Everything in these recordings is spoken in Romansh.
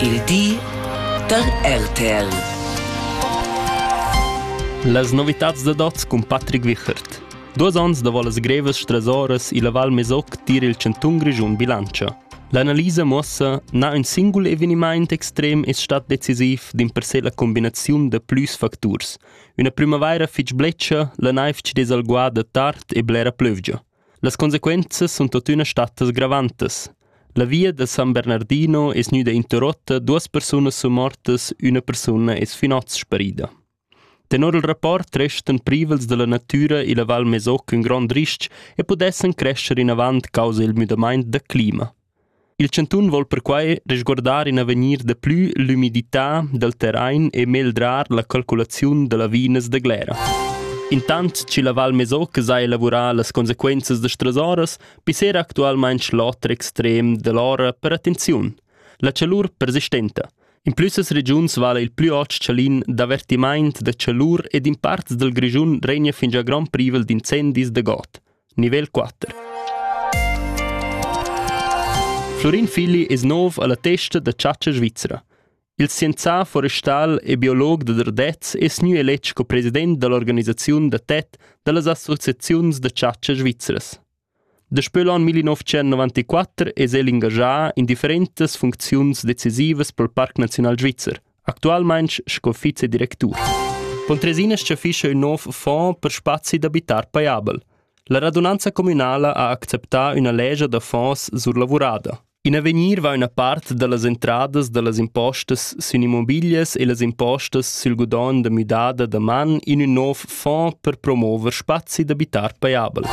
Il di da RTL. Las novitads da dots cun Patrick Wichert. Duos ons davo las grevas stresoras illa Val Mesoc tir il chantun Grischun bilantscha. L'analisa muossa, na ün singul evenimaint extrem es stat decisiv d'in per se la combinaziun da plüs facturs. Üna prümavaira fich bletscha, la naiv ci dess alguà da tard e blera plövgia. Las consequenzas sun tuottüna stattas gravantas. La via da San Bernardino es gnüda interrotta, duos persunas sun mortas, üna persuna es finots sparida. Tenor il rapport restan privels da la natüra illa Val Mesoc ün grond ris-ch e pudessan crescher inavant causa il müdamaint da clima. Il chantun vol perquai resguardar in avegnir da plü l'ümidità dal terrain e megldrar la calculaziun da lavinas da Glera. Intant chi la Val Mesoc s'ha elavurà las consequenzas da stresoras, pissera actualmaing l'oter extrem da l'ora per attenziun, la chalur persistenta. In plü ses regiuns vala il plü ot chalin d'avertimaint da chalur ed in parts dal Grischun regna fingià grand privel d'incendis da god. Nivel 4. Florin Filli es nov alla testa da chatscha svizra. Il scienzà forestal e biolog da Dardez es gnü eletg co president da l'organisaziun da TET da las associaziuns da chatscha svizras. Daspö l'an 1994 es el ingagià in differentas funcziuns decisivas pel Parc Naziunal Svizzer – Actualmain sco vicedirectur. Pontresina schaffischa ün nouv fond per spazi d'abitar paiabel. La radunanza communala ha acceptà üna legia da fonds surlavurada. In avegnir va üna part da las entradas da las impostas sün immobiglias e las impostas sül gudogn da müdada da man in ün nov fond per promover spazi d'abitar paiabel.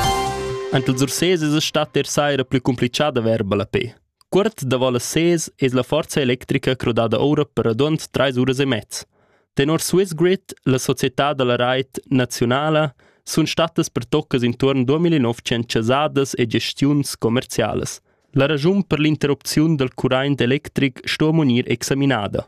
Ant els Ursés es a stat der saira plü complichà da verba la pe. Cuort davo las ses es la forza electrica crudada oura per radund trais uras e mez. Tenor Swiss Grid, la società da la rait naziunala, sun stattas pertoccas intuorn 2900 chasadas e gestiuns commercialas. La ragiun per l'interrupziun dal curaint electric sto gnir examinada.